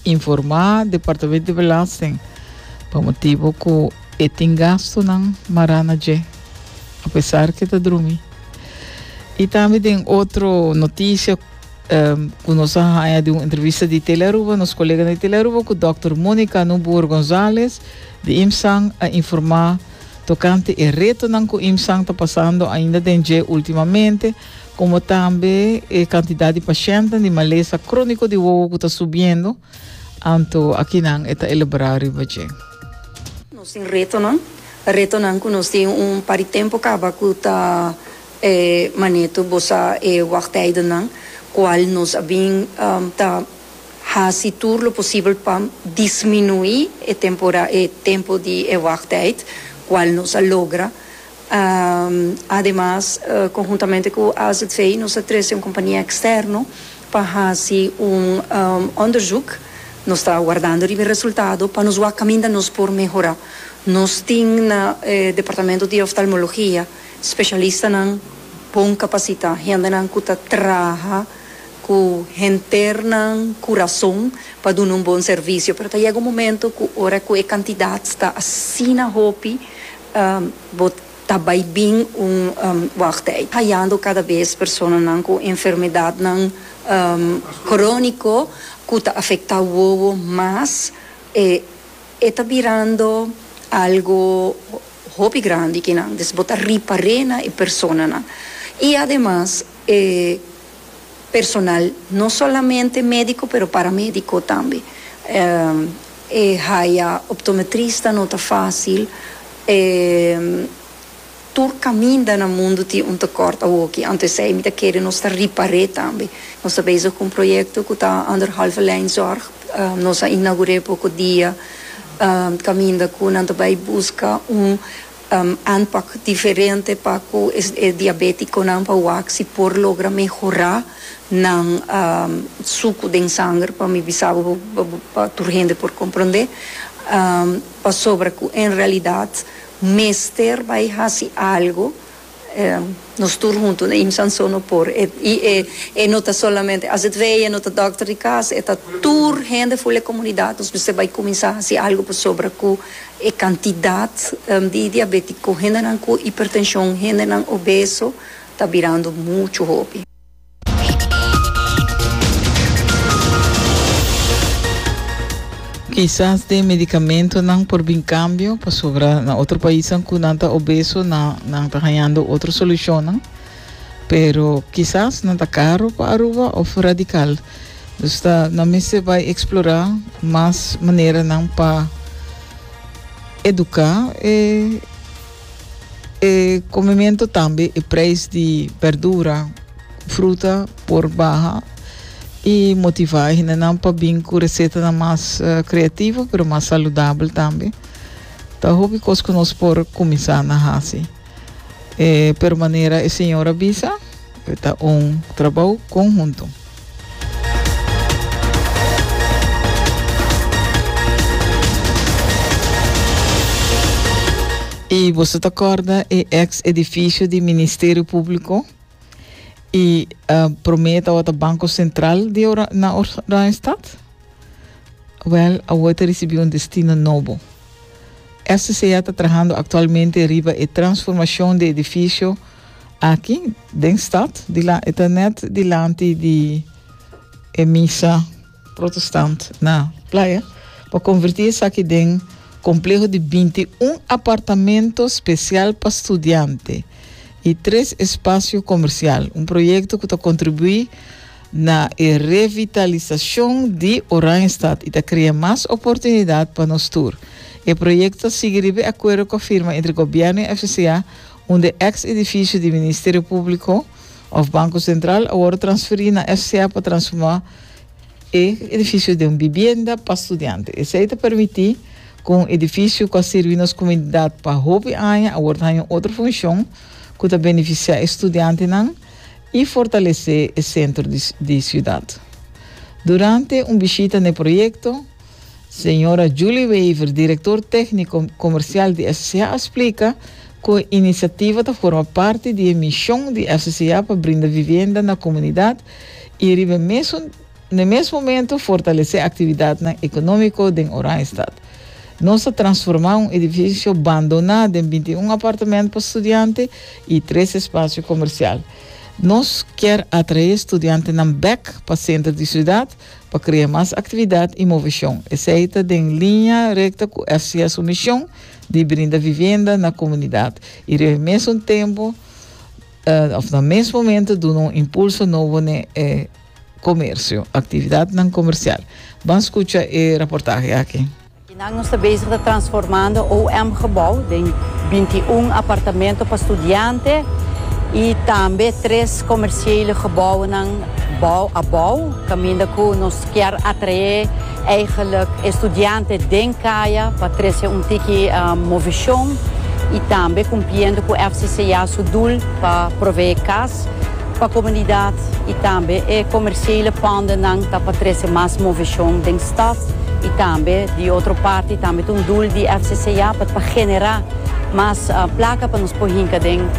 Informá Departamento di Belasting pa motibu ku e tin gastunan mará na dje, apesar ku e ta drumi. I tambe den otro notisia ku nos a haña di un entrevista di Telearuba, nos koleganan di Telearuba ku dòkter Monica Nubuor Gonzalez di IMSAN a informá tokante e retonan ku IMSAN ta pasando ainda den dje ultimamente komo tambe e kantidat di pashèntnan di malesa króniko di wowo ku ta subiendo, anto akinan e ta elaborá riba dje. Nos tin retonan, retonan ku nos tin un par di tempu kaba ku ta e maneto bosa e wagtijdennan kual nos a bin ta hasi tur lo posibel pa disminuí e temporada, e tempu di e wagtijd kual nos a logra. Ademas, konhuntamente ku AZV nos a trese un kompania eksterno pa hasi un òndersuk. Nos ta wardando riba e resultado pa nos wak kaminda nos por mehorá. Nos tin na e departamento di oftalmologia spesialistanan bon kapasitá, hendenan ku ta traha ku henternan kurason pa duna un bon servisio. Pero ta yega un momento ku ora ku e kantidat ta asina hopi, Bo ta bai bin un wògd ei, hayando kada bes personanan ku enfermedadnan króniko ku ta afektá wowo mas. E ta birando algu hopi grandi kinan, dus bo ta ripar'é na e personanan. I ademas e. personal, no solamente médiko pero paramédiko tambe. E haya optometrista no ta fásil, e tur kaminda na mundu tin un tekort awoki, anto esei mi ta kere nos ta ripar'é tambe. Nos ta bezig ku un proyekto ku ta anderhalve lijn zòrg, nos a inagur'é poko dia kaminda ku nan ta bai buska un. Aanpak diferente pa ku e diabétikonan pa wak si por logra mehorá nan suku den sanger pa mi bisa bo pa tur hende por komprondé pasobra ku en realidat mester bai hasi algu. Nos tur huntu na IMSA anso no por. I e no ta solamente As It Wee, e no ta dòkter di kas, e ta tur hende ful e komunidat. Nos mester bai kuminsá hasi algu pasobra ku e kantidat di diabétiko, hendenan ku ipertenshon, hendenan obeso ta birando muchu hopi. Kisas den medicamentonan por bin cambio, pasobra na otro paisnan cu nan ta obeso nan, nan ta hañando otro solucionnan. Pero kisas nan ta caro pa Aruba of radical. Dus ta, nan mester bay explora mas maneranan pa educa e E comimento tambe e prijs di berdura, fruta por baha y motiva e hindenan pa bin cu recetanan mas creativo pero mas saludabel tambe. Ta hopi cos cu nos por cuminsa na haci. Pero manera e señor a bisa, ta un trabou conhunto. I boso ta corda e ex edificio di Ministerio Público i uh, promé tawata Banco Central di Ora, na Oranjestad? Wel, awo ta recibi un destino nobo. SCA ta trahando actualmente riba e transformacion de edificio Aki den stad di la e ta nèt dilanti di e misa protestant na Playa pa konvertí esaki den kompleho di binti un apartamento spesial pa studiante i tres espasio komersial, un proyekto ku ta kontribuí na e revitalisashon di Oranjestad i ta krea mas oportunidat pa nos tur. E proyekto ta sigui riba e akuerdo ku a firma entre gobièrnu i FCCA, un di e eks edifisio di Ministerio Públiko òf Banko Sentral a wòrdu transferí na FCA pa transformá e edifisio den un bibienda pa studiante. Esei ta permití ku un edifisio ku a sirbi nos komunidat pa hopi aña a wòrdu haña un otro funshon ku ta benefisiá e studiantenan i fortalesé e sentro di siudat. Durante un bishita n'e proyekto, Señora Julie Wever, Director Técnico Comercial di FCCA a splica cu e iniciativa ta forma parti di e mision di FCCA pa brinda vivienda na comunidad y riba e mesun n'e mes momento fortalece actividadnan economico den Oranjestad. Nos a transforma un edificio bandona den binti un apartamento pa studiante y tres espacio comercial. Nos kier atrae studiantenan bek pa center di ciudad pa krea mas aktividat i moveshon, esei ta den liña rekta ku FCS su mishon di brinda vivenda na komunidat i riba e mesun tempu òf na mes momentu duna un impulso nobo n'e e komersio, aktividatnan komersial. Ban skucha e raportahe aki. Kinan nos ta bezig ta transformando OM-gebou den binti un apartamento pa studiante i tambe tres komersiele gebounan bou a bou, kaminda ku nos kier atraé eigelik e studiante den kaya pa trese un tiki movishon i tambe kumpliendo ku FCCA su dul pa proveé kas. Pa komunidat y tambe e komersiele pondennan ta pa trese mas moveshon den staf y tambe di otro parti tambe ta un doel di FCCA pa ta genera mas plaka pa nos por hinka den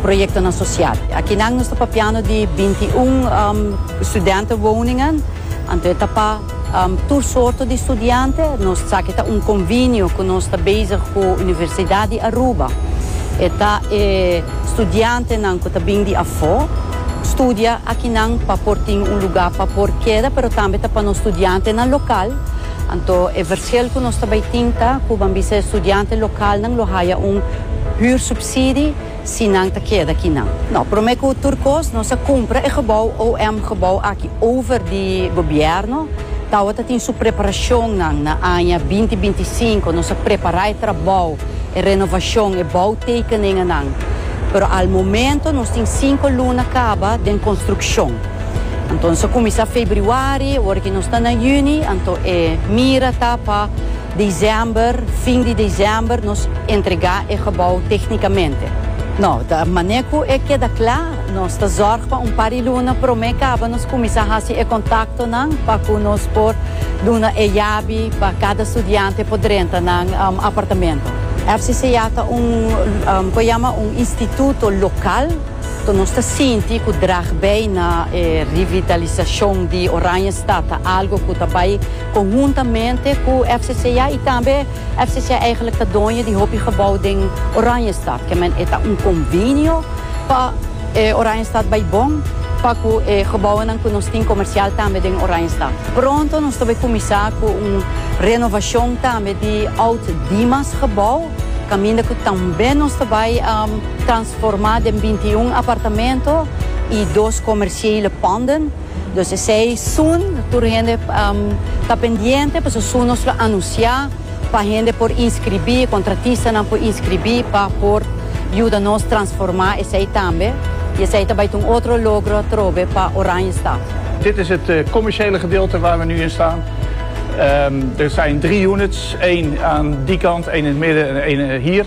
proyektonan sosial. Akinan nos ta papiando di binti un studente woningen anto e ta pa. Tur sorto di studiante. Nos sa ke ta un konvinio ku nos ta bezig ku Universidat di Aruba. E ta e studiantenan ku ta bin di afó studia akinan pa por tin un lugá pa por keda, pero tambe ta pa nos studiantenan lokal. Anto e vershel ku nos ta bai tin ta ku ban bisa e studiante lokalnan lo haya un hürsubsidie. Si nan ta keda kinan. No, prome ku tur kos nos a kumpra e gebou OM gebou aki over di gobièrnu. Tawata tin su preparashonnan na aña binti binti sinku. Nos a prepará e trabou, e renovashon, e boutekeningennan. Pero al momento nos tin sinku luna kaba den konstrukshon. Anto nos a kuminsá febriwari, wor aki nos ta na yüni, anto e mira ta pa. December, fin di december nos entrega e gebou tecnicamente. No, ta mane cu e keda cla, nos ta zorg pa un par di luna prome caba nos cuminsa haci e contactonan pa cu nos por duna e yabi pa cada studiante por drenta nan apartamento. FCCA ta un cu e yama un instituto local, to nos ta sinti cu drag bay na e revitalisacion di Oranjestad ta algo cu ta bay. Konhuntamente ku FCCA i tambe FCCA eigenlik ta doño di hopi gebou den Oranjestad. Ke men e ta un konvinio pa e Oranjestad bai bon pa ku e gebounan ku nos tin komersial tambe den Oranjestad. Pronto nos ta bai kuminsá ku un renovashon tambe di oud Dimas gebou kaminda ku tambe nos ta bai transformá den binti i un apartamento i dos komersiele panden. Dos esei soon tur hende ta pendiente pasobra soon nos lo anunciá pa hende por inscribí, contratistanan por inscribí pa por yuda nos transformá esei tambe i esei ta bai ta un otro logro atrobe pa Oranjestad. Dit is het commerciële gedeelte waar we nu in staan. Er zijn drie units, één aan die kant, één in het midden en één hier.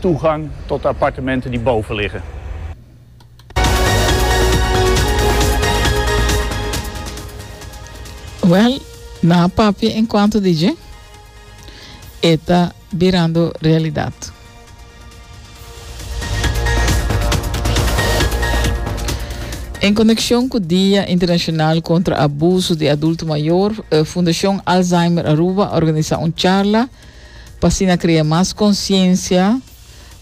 Toegang tot appartementen di boven liggen. Well, nan a papia en cuanto di dje, e ta birando realidad. En conexion cu Dia Internacional contra Abuso di Adulto Mayor, Fundacion Alzheimer Aruba a organisa un charla pa asina krea mas konsiensia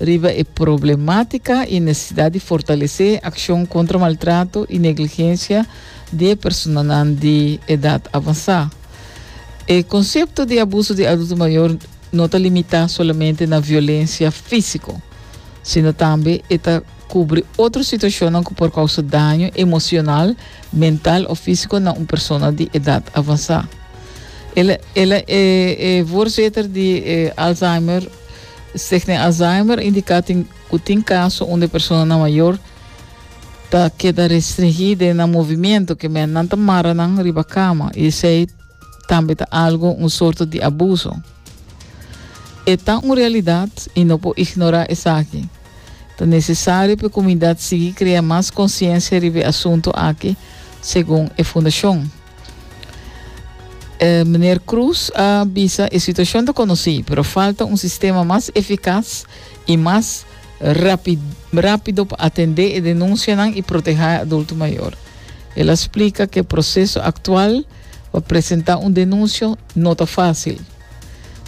riba e problemátika i nesesidat di fortalesé akshon kontra maltrato i negligensia di e personanan di edat avansá. E konsepto di abuso di adulto mayor no ta limitá solamente na violensia físiko, sino tambe e ta Kubri otro situashonnan ku por kousa daño emosional, mental o físiko na un persona di edat avansá. El el a e e voorzitter di e Alzheimer Stichting Alzheimer indiká tin ku tin kaso unda e personanan mayor ta keda restringí den nan movimiento, ku mennan ta mara nan riba kama i esei tambe ta algo un sorto di abuso. E ta un realidat i no por ignorá esaki. Ta nesesario pa e komunidat sigui krea mas konsiensia riba e asuntu aki, segun e fundashon. Meneer Cruz a bisa e situashon ta konosí, pero falta un sistema mas efikas i mas rápido pa atendé e denunsianan i protehá e adulto mayor. El a splika ku e proseso aktual pa presentá un denunsio no ta fásil.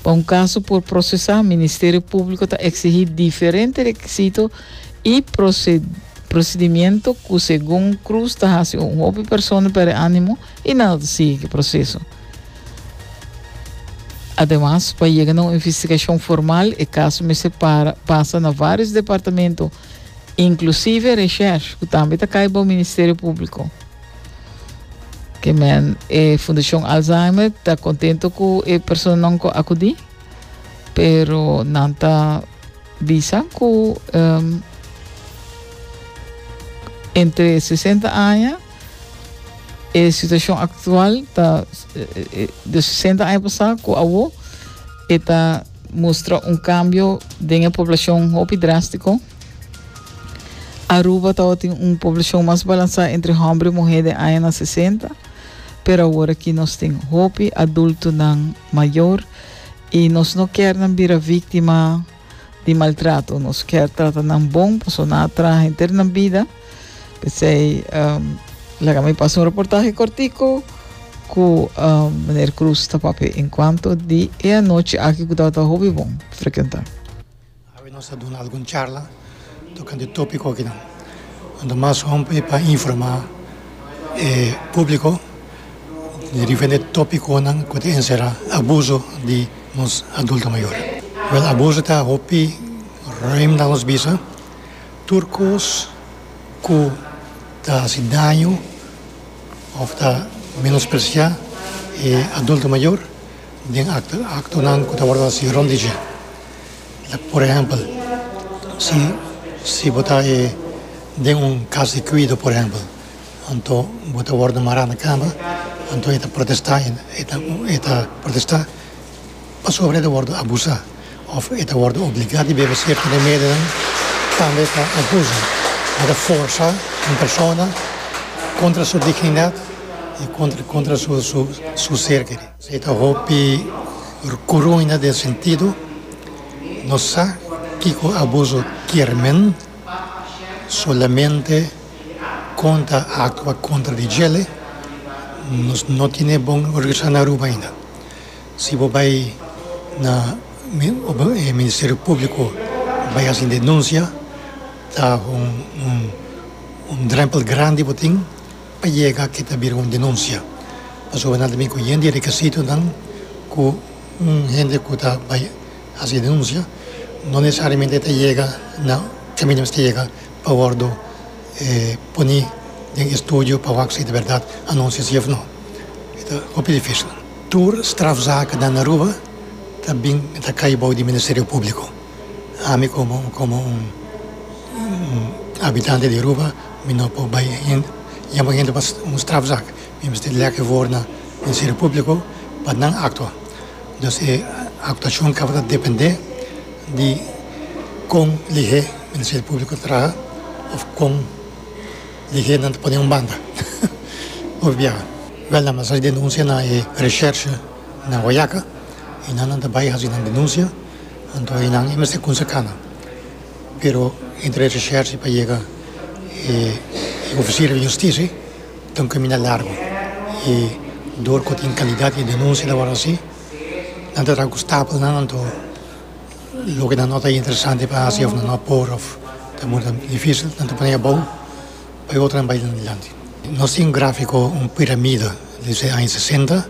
Pa un kaso por prosesá, Ministerio Públiko ta eksigí diferente rekisito i prosedimiento ku segun Cruz ta hasi un hopi persona pèrdè ánimo i nada ta sigui ki proseso. Ademas, pa yega na un investigashon formal e kaso mester para pasa na vários departamento, inklusive Reshersh ku tambe ta kai bou Ministerio Públiko. Ke men, e Fundashon Alzheimer ta kontento ku e personanan ku akudí, pero nan ta bisa ku um, entre 60 aña e situashon aktual ta de 60 aña pasá ku awo e ta mustra un kambio den e poblashon hopi drástiko. Aruba tawa tin un poblacion mas balansa entre homber y muher den añanan sesenta, pero awor aki nos tin hopi adultonan mayor y nos no kier nan bira victima di maltrato. Nos kier trata nan bon pasobra nan a traha henter nan bida. P'esey laga mi pasa un reportahe cortico cu meneer Cruz ta papia en cuanto di e anochi aki cu tabata hopi bon frecuenta. Awe nos ta duna algun charla tokante topiko akinan. Nos ta mas hopi pa informá e públiko di diferente topikonan ku ta enserá abuso di nos adulto mayor. Wèl, abuso ta hopi ruim na nos bisa. Tur kos ku ta hasi daño òf ta menospresiá e adulto mayor den aktonan ku ta wòrdu hasi rònt di dje. Por ehèmpel, si si bo ta e den un kas di kuido, por ehèmpel, anto bo ta wòrdu mará na kama, anto e ta protestá, e ta e ta protestá pasobra e ta wòrdu abusá òf e ta wòrdu obligá di bebe serka di e medonan, tambe ta abuso, bo ta forsá un persona kontra su dignidat i kontra kontra su su ser. Si ta hopi rcuruña den sentido, no sa kico abuso kier men, solamente con ta actua contra di djele, nos no tine bon organisa na Aruba ainda. Si bo bay na Ministerio Publico bay haci un denuncia ta un drempel grandi bo tin. pa yega ki ta bira un denunsia pasobra nan ta bin ku yende rekisitonan ku un hende ku ta bai hasi denunsia no nesesariamente e ta yega na kaminda mester yega pa wòrdu pone den estudio pa wak si ta bèrdat anunsia si òf no e ta hopi difísil. Tur strafzakennan na Aruba ta bin ta kai bou di Ministerio Públiko. ami komo komo un un habitante di aruba mi no por bai hen yama hende pas un strafzak mi mester leke for na ministerio publico pa nan aktua dus e aktuashon tabata depende di kon lihé ministerio publico ta traha of kon lihé nan ta pone un banda por biaha wèl nan mester haci denunsia na e reshèrshe na Guayaca y nan nan ta bai haci nan denunsia. Anto e nan e mester kunsa kanga. Pero entre e reshershi pa yega e ofisier di hustisi ta un kaminda largu. I dor ku tin kandidat di denunsia ta wòrdu hasi, nan ta traha ku stapelnan. Anto loke nan no ta interesante pa hasi òf nan no por òf ta muru ta difísil, nan ta pon'é abou pa e otro nan bai den adelante. Nos tin un gráfiko, un piramida. Dese aña sesenta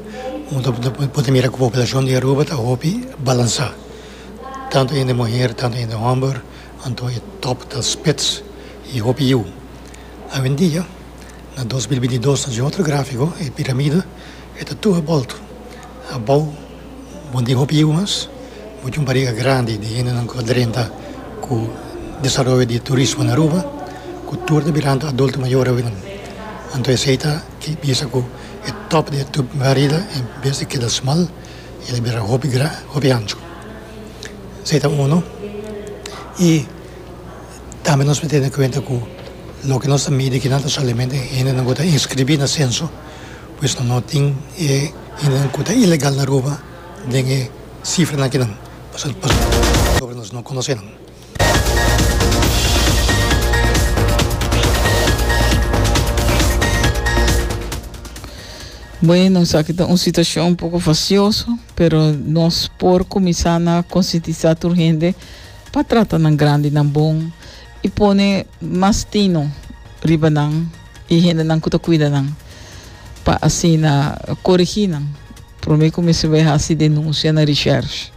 bo ta bo ta mira ku poblacion di Aruba ta hopi balansa. Tantu hende muher, tantu hende homber, anto e top ta spits i hopi yiu. Awendia, na dos mil binti dos ta den otro grafiko, e piramida e ta tur bolto. Abou bo no tin hopi yiu mas, bo tin un bariga grandi di hendenan ku ta drenta ku desaroyo di turismo na Aruba, ku tur ta birantu adulto mayor awenan. Anto esei ta. E bisa ku e tòp di e tub Merida en bes di keda smal, el a bira hopi gran, hopi anchu. Esei ta unu. I tambe nos por tene kuenta ku loke nos ta midi akinan ta solamente hendenan ku ta inskribí na senso, pues nan no tin e hendenan ku ta ilegal na Aruba den e sifranan akinan, pasobra nos no konosé nan. Bueno, sa kita un situacion un poco facioso, pero nos por cominsar na conscientizar tur hende pa trata nan grandi nan bon y pone mas tino riba nan y hende nan cu ta cuida nan pa asina corigi nan. Prome ku mester bai hasi denunsia na Recherche.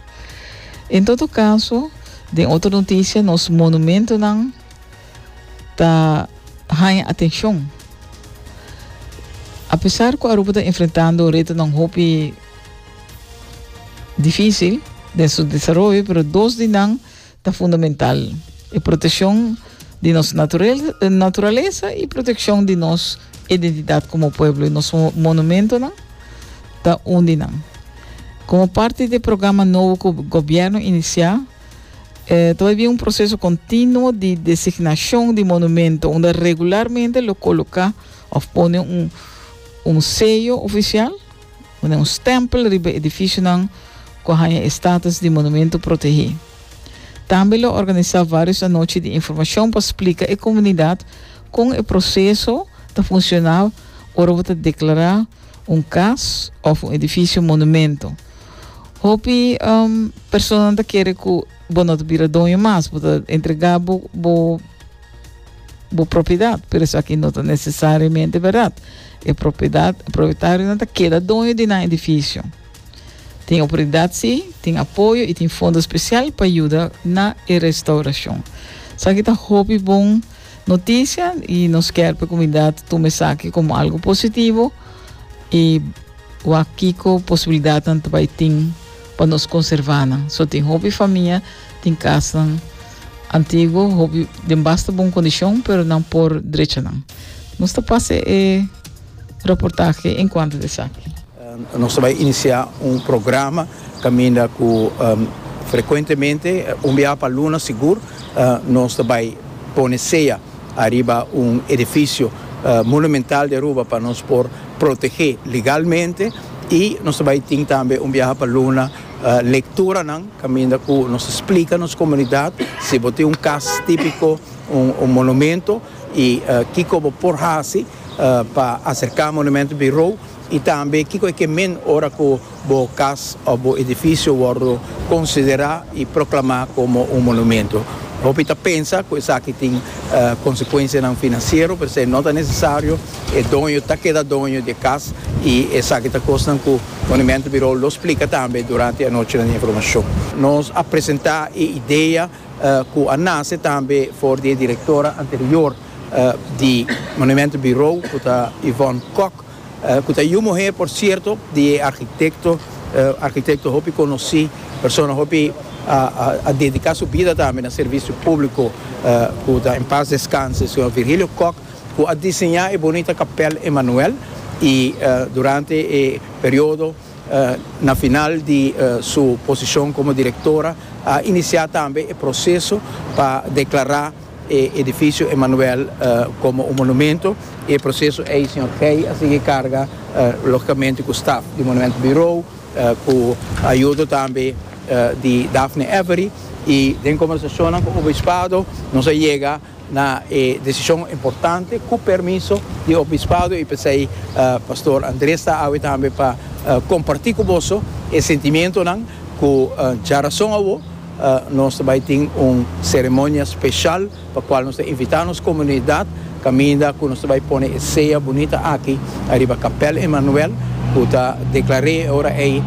En todo kaso, den otro notisia nos monumentonan ta haña atenshon. Apesar ku Aruba ta enfrentando retonan hopi difísil den su desaroyo pero dos di nan Ta fundamental e proteccion di nos naturalesa y proteccion di nos identidad como pueblo y nos monumentonan ta un di nan. Como parti di e programa nobo cu gobierno inicia, ta bay bien un proceso continuo di designacion di monumento unda regularmente lo coloca of pone un sello oficial, Pone un stempel riba edificionan cu a haña e status di Monumento Protege. Tambe lo organisa varios anochi di informacion pa splica e comunidad con e proceso ta funciona ora bo ta declara un cas of un edificio monumento. Hopi personanan ta kere cu bo no ta bira doño mas, bo ta entrega bo bo propiedad, pero esaki no ta necesariamente verdad. E propiedad, propietarinan ta keda doño di nan edificio. Tin autoridad si, tin apoyo y tin fondo special pa yuda na e restauracion. Esaki ta hopi bon noticia y nos kier pa e comunidad tuma esaki como algo positivo y wa kico posibilidadnan ta bay tin pa nos conservanan. So tin hopi famia tin casanan. Antiguo hopi den basta bon kondishon pero nan por drecha nan. Nos ta pasa e reportahe enkuanto di esaki. Nos ta bai inisiá un programa kaminda ku frekuentemente, un biaha pa luna sigur, nos ta bai pone sea ariba un edifisio monumental di Aruba pa nos por protegé legalmente i nos ta bai tin tambe un biaha pa luna. Lecturanan caminda cu nos splica nos comunidad si bo tin un cas tipico, un monumento y kico bo por haci pa acerca Monumento Bureau y tambe kico e ke men ora cu bo cas of bo edificio wordo considera y proclama como un monumento. Hopi ta pensa cu esaki tin consecuencianan financiero p'esei no ta necesario, e doño ta keda doño di e cas y esaki ta cosnan cu Monumento Bureau lo splica tambe durante anochi nan informacion. Nos a presenta e idea cu a nace tambe for di e directora anterior di Monumento Bureau cu ta Yvonne Kok, cu ta yu muher por cierto di e architecto, architecto hopi conoci, persona hopi a dedica su bida tambe na servicio publico cu ta en paz descanse, señor Virgilio Kok. Cu a diseña e bonita Capel Emanuel y durante e periodo na final di su posicion como directora a inicia tambe e proceso pa declara e edificio Emanuel como un monumento y e proceso ey Sr. Gey a sigui carga logicamente cu staf di Monumento Bureau cu ayudo tambe di Daphne Avery y den conversacionnan cu Obispado nos a yega Na e decision importante cu permiso di Obispado y p'esey Pastor Andres ta awe tambe pa comparti cu boso e sentimientonan cu dja rason awo nos ta bay tin un ceremonia special pa cual nos ta invita nos comunidad caminda cu nos ta bay pone e sea bunita aki ariba Capel Emmanuel cu ta declare e ora ey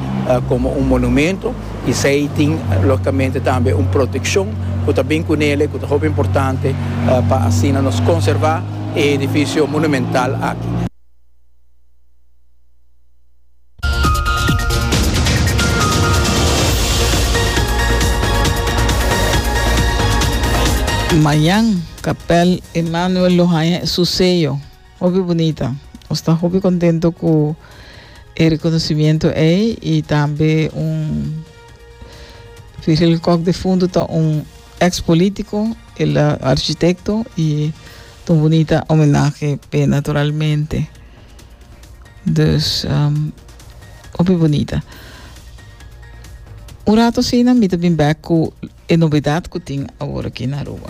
como un monumento. Esei tin logicamente tambe un proteccion cu ta bin cu nele cu ta hopi importante pa asina nos conserva e edificio monumental aki. Mayan, Kapèl Emanuel lo haña e su seyo. Hopi bunita. Nos ta hopi contento cu e reconocimiento ey y tambe un Virgil Kok de Fundo ta un ex politico, el a architecto y ta un bunita homenahe p'e naturalmente. Dus hopi bunita. Un rato asina mi ta bin bek cu e novedad cu tin awor aki na Aruba.